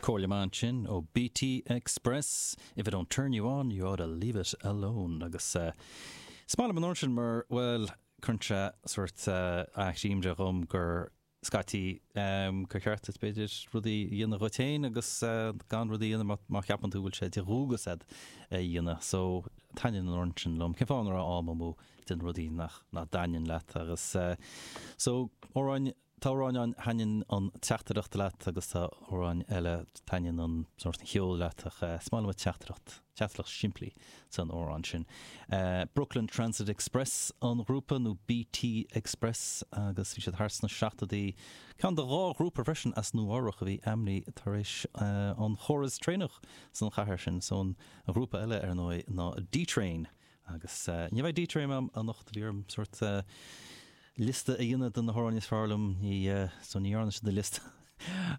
Comhairle maith ansin ó BT Express, If I don't turn you on, you ought to leave it alone agus eh is maith liom an t-amhrán sin mar bhuel tugann sé sort eh achoimre dhom gur scaití ehm gur cheart duit b'fhéidir rudaí a dhéanamh dhuit fhéin agus eh gan rudaí a dhéanamh má má cheapann tú go bhfuil sé de dhualgas agat é a dhéanamh so taitníonn an t-amhrán sin liom cén fáth ag cur am amú déanamh rudaí nach nach dtaitníonn leat agus eh so amhráin Tá amhráin ann, taitníonn an teachtaireacht leat agus tá amhráin eile, taitníonn an sórt an cheoil leat ach is maith liom an teachtaireacht, teachtaireacht simplí san amhrán sin. Brooklyn Transit Express an ghrúpa nó BT Express agus bhí siad thart sna seachtóidí. Ceann de dhá ghrúpa freisin as Nua Eabhrach a bhí ainmnithe tar éis an chóras traenach san chathair sin so an ghrúpa eile ar ndóigh ná D-Train, Agus ní bheidh D-Train agam anocht, bhí orm sort liosta a dhéanamh de na hamhráin is fearr liom, ní, so ní dhearna siad an liosta.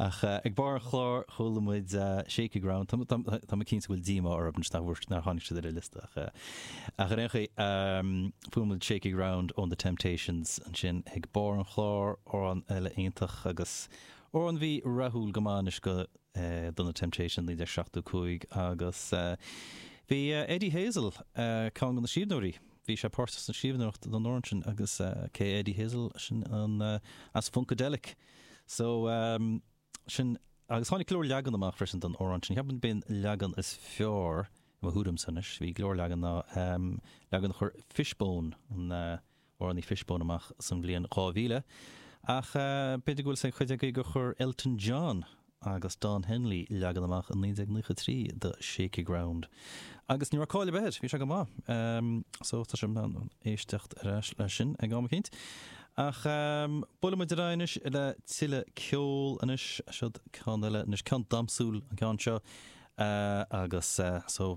Ach ag barr an chláir chuala muid Shakey Ground, tá mé, tá mé cinnte go bhfuil díomá orthu anois nach bhfuair, nár tháinig siad ar an liosta ach, ach ar aon chaoi, fuair muid Shakey Ground ón The Temptations ansin ag barr an chláir, amhrán eile iontach agus amhrán a bhí rathúil go maith anois go, do na Temptations 1975 agus bhí Eddie Hazel ceann de na scríbhneoirí, bhí sé páirteach sa scríbhneoireacht don amhrán sin agus cé Eddie Hazel sin an as Funkadelic so sin agus tháinig go leor leagan amach freisin don amhrán sin, ceapaim b'é an leagan is fearr i mo thuairimse anois, bhí go leor leagan ná leagan a chuir Fishbone an. grúpa Fishbone amach san bhliain 2000, ach b'fhéidir go bhfuil 'fhios ag cuid agaibh gur chuir Elton John agus Don Henley leagan amach i 1993 do Shakey Ground agus ní raibh caill ar bith air, bhí sé go maith. So tá sé in am éisteacht aríst le sin ag am eicínt. Ach buaileadh muid ar aghaidh anois le tuilleadh ceol anois, seod ceann eile anois, ceann damsúil an ceann seo agus so.